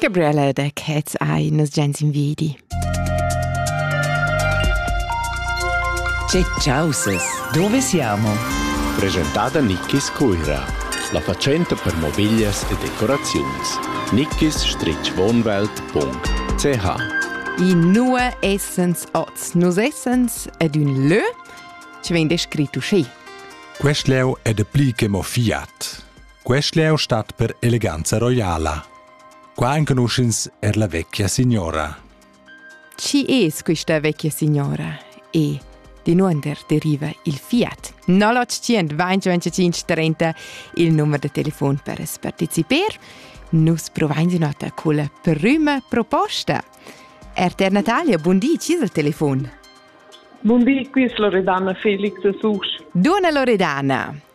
Gabriella da Cats ei nos gens in vedi. Che causes, dove siamo? Presentada Nickis Cuira, la facenta per mobiglias e decoraziuns. nickis-wohnwelt.ch I nua essens oz? Nus essens ad un lö che vegn descrit uschè. Quest leu è de pli che mo fiat. Quest leu stat per eleganza roiala. Qua enconuschins er la vecchia signora. Chi es quista vecchia signora? E Dinunder deriva il fiat 0825 il numero de telefon per partecipar. Nus provain di nota col prima proposta. RTR Natalia, buon di, ci il telefon? Buon di, qui es Loredana Felix Susch. Dona Loredana,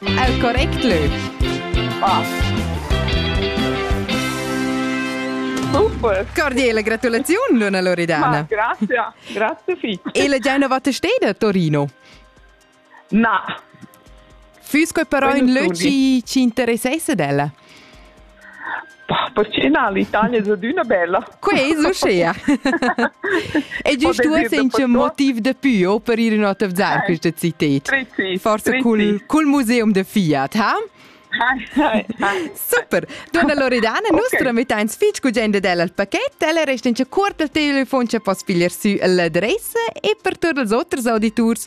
El correct lög. Super. Cordiale gratulaziun, Luna Loredana. Ma grazie, grazie fitto. E la Genova te steda a Torino? Na. Füsco però in lög ci, ci interessesse della? Pacina, l'Italia è adüna bella. Quei es uschea. E giust uossa in che motiv de più oh, per ir in attezzar eh, questa città. Prezi, Forse prezi. cul, cul museum de Fiat, ha? Hi, hi, hi. Super. Donna Loredana, nus okay. trametteins fitg gugenda dell al paquet, ella resta in che cuort al telefon che poss figlier sü l'adressa e per tutti els oters auditors